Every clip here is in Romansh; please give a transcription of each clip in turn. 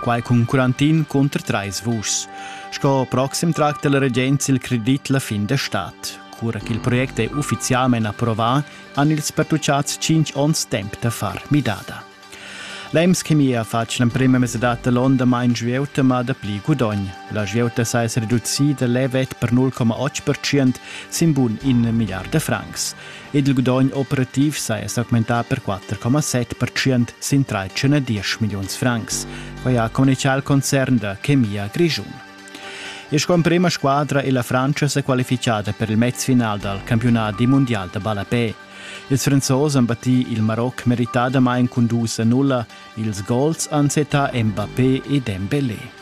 Quai cun quarantin cunter trais vuschs. Sco proxim tracta la regenza il credit la fin da stat. Cura ch'il project è uffizialmain approvà, han ils pertucciads cinc onns temp da far midada. L'EMS-chemia fatg l'emprima mesadad da l'onn damain svieuta ma dapli gudogn. La svieuta sa es reducida levet per 0,8% sin bun in milliard da francs. ed il gudogn operativ saja s'augmentà per 4,7% sin 3,10 milliuns francs. Quai ha communitgà il concern da Chemia Grischun. E sco emprima squadra è la Francia sa qualifichada per il mezfinal dal campionat di mondial da ballapè. Ils Franzosen han battì il Maroc meritadamain cun dus a nulla. Ils gols han settà Mbappé e Dembélé.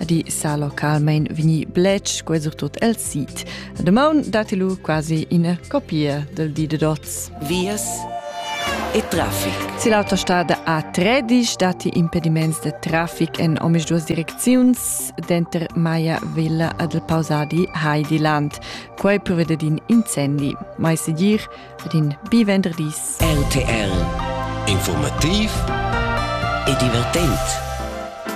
ed i sa localmain vegni bletsch qua sur tot el sit. Damaun datilu quasi ina copia del di de dots. Vias e traffic. Si l'autostrada A13 dati impediments de traffic en omis duas direcziuns denter Maya Villa ed il pausadi Heidiland. Quei prevede din incendi. Mai segir ed in bi venderdis. RTL Informativ e divertent.